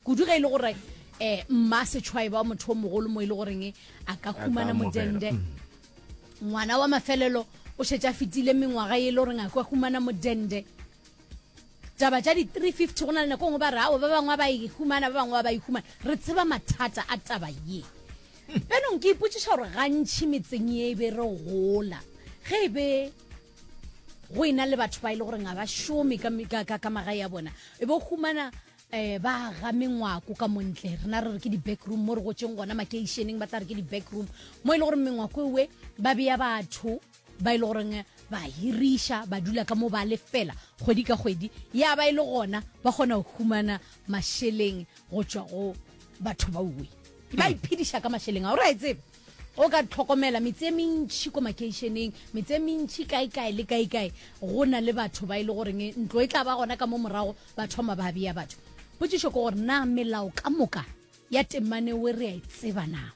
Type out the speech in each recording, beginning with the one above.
kudu ge e le gore um mma setšhwae ba motho o mogolo mo e le goreng a ka humana modende mm. ngwana wa mafelelo o šetša fetile mengwaga e le goreng a kwa humana modende taba tša di-350 go na le nako ngwe ba re ao ba bangwe ba e humana ba bangwe ba e humana re tseba mathata a taba ye benong ke ipotšiša gore gantšhi metseng ye e be re gola ge e be go e na le batho ba e le gore ga ba šome ka magae a bona e bo humana um ba ga mengwako ka montle rena re re ke di-backroom mo re gotseng gona makeišeneng ba tla re ke di-backroom mo e le gore mengwako ewe ba beya batho ba e le goreng ba hiriša ba dula ka mo ba lefela kgwedi ka kgwedi ya ba e le gona ba kgona go humana mašeleng go tšwa go batho ba uwe ba hmm. iphediša ka mašeleng a o re a e tsebe O ka hlokomela metse e mentši ko makeišeneng, metse e mentši kaekae le kaekae, go na le batho ba e le goreng ntlo e tla ba gona ka mo morago ba thoma ba bea batho. Potšišo ke gore na melao ka moka ya temane we re a e tseba na?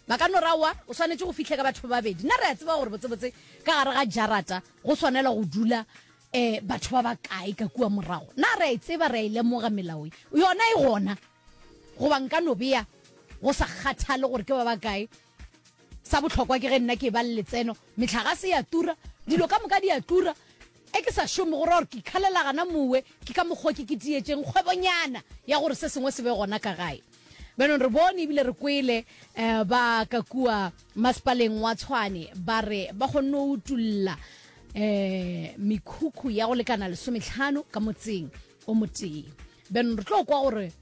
Ba ka no ra, Aowa, o swanetše go fihle ka batho ba babedi. Na re a tseba gore botsebotse ka gare ga jarata go swanela go dula um batho ba bakae ka kua morago? Na re a e tseba, re a e lemoga melao ye? Yona e gona. Goba nka no bea, go sa kgathale gore ke ba bakae, sa bohlokwa ke ge nna ke eba le letseno. Mehlagase e a tura, dilo ka moka di a tura. Ge ke sa šome, go ra gore ke ikhalela gana mowe, ke ka mokgwa o ke kitiyetšeng kgwebonyana ya gore se sengwe se be gona ka gae. Bjanong re bone ebile re kwele um ba ka kua masepaleng wa Tshwane ba re ba kgonne go utolla um mekhukhu ya go lekana lesometlhano ka motseng o motee. then re tlo kwa gore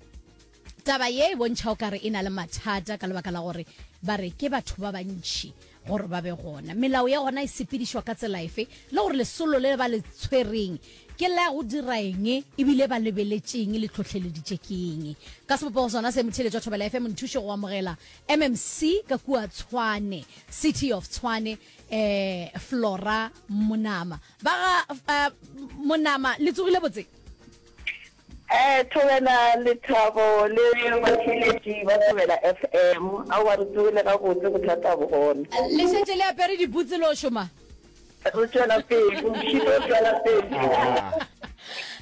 taba ye e bontšha o kare e na le mathata ka lebaka la gore ba re ke batho ba bantšhi gore ba be gona melao ya gona e sepedišwa ka tsela efe le gore lesolo le ba le tshwereng ke la go dira eng ebile ba lebeletšeng le tlhotlheleditše ke eng ka sebopogo sona se motheletso wa thobela fm nthuše go amogela mmc ka kua tshwane city of tshwane eh flora monama ba ga eh, monama le tsogile botse Eh Thobela, Lethabo le batheeletši ba Thobela FM. Aowa re tsogile gabotse, bothata bo gona. Le šetše le apere dibutse lo šoma? Re tšwela pele, motšhini o tšwela pele.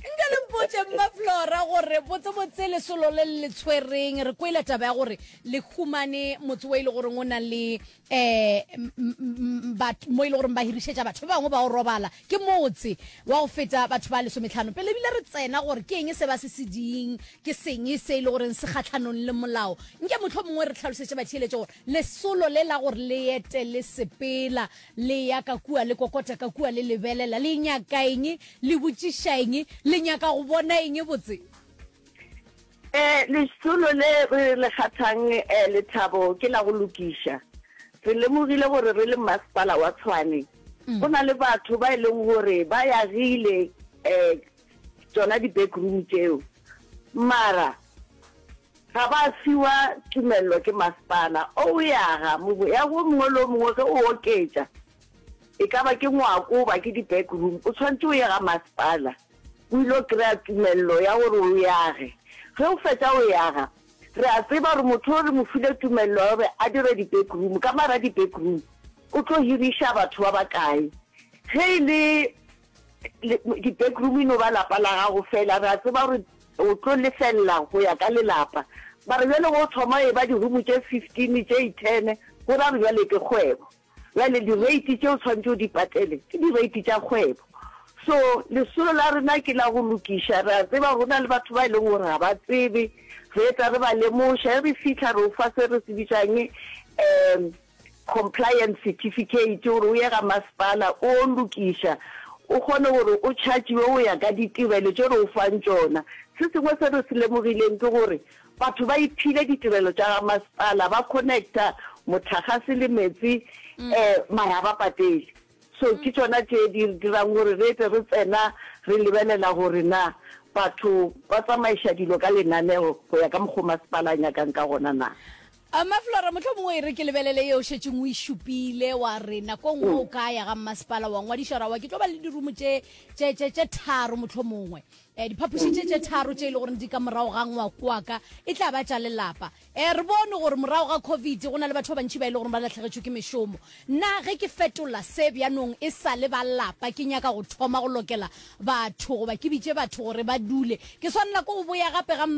Nka le mpotše Mma Flora gore botsebotse lesolo le le tshwereng, re kwele taba ya gore le humane motse wo e le goreng o na le um mo e le goreng ba hirišetša batho ba bangwe ba o robala ke motse wa go feta batho ba lesometlhano pele ebile re tsena gore ke eng se ba se seding ke seng se e le goreng se kgatlhanong le molao nke motlho mongwe re tlhalosetše batheeletše gore lesolo le la gore le ete le sepela le ya ka kua le kokota ka kua le lebelela le nyaka eng le botšiša eng le nyaka go bona eng botse Eh, lesolo le re le kgathang eh, lethabo ke la go lokiša. Re lemogile gore re le masepala wa Tshwane, mm. go na le batho ba e leng gore ba yagile eh, tsona di-back room tseo mara ga ba fiwa tumelelo ke masepala o o yaga ya go mongwe le o mongwe ge o oketša e ka ba ke ngwako ba ke di-back room o tshwanetse o ye ga masepala o ile go kry-a tumelelo ya gore o yage. Ge o fetsa go yaga, re a tseba gore motho o re mo file tumelelo ya gore a dire di-backroom, ka mara di-backroom o tlo hiriša batho ba ba kae. Ge e le di-backroom e no ba lapa la gago fela, re a tseba gore o tlo lefelela go ya ka lelapa. Ba re bjale ge o thoma e ba di-room tše fifteen, tše ten, go ra re bjale ke kgwebo. Bjale direiti tše o tshwanetše o di patele ke direiti tša kgwebo. So, lesolo la rena ke la go lokiša. Re a tseba go na le batho ba e leng gore ga ba tsebe, re etla re ba lemoša. Ge re fitlha re o fa se re se bitšang um compliance certificate, gore o ye ga masepala o lokiša, o kgone gore o chargiwe go ya ka ditirelo tše re o fang tšona. Se sengwe se re se lemogileng ke gore Batho ba iphile ditirelo tša ga masepala, ba connecta motlhagase le metsi mm. eh, mara ba patele so mm. ke tsona tše di dirang gore re tle re tsena re lebelela gore na batho ba tsamaiša dilo ka lenaneo go ya ka mokgwa masepala a nyakang ka gona na a maflora motlho mongwe e re ke lebelele e o šetseng o e šupile wa re nako nngwe o mm. ka ya ga mmasepala wa ngwadišwa ra wa ke tlo ba le dirumo tše tharo motlho mongwe E, diphapoši tše tše tharo tše e le goreng di ka morago ga ngwako wa ka e tla ba tša lelapa. E, re bone gore morago ga Covid go na le batho ba bantši ba e le goreng ba lahlegetšwe ke mešomo. Nna ge ke fetola se bjanong e sa le ba lapa ke nyaka go thoma go lokela batho goba ke bitše batho gore ba dule, ke swanela ke go boya gape ga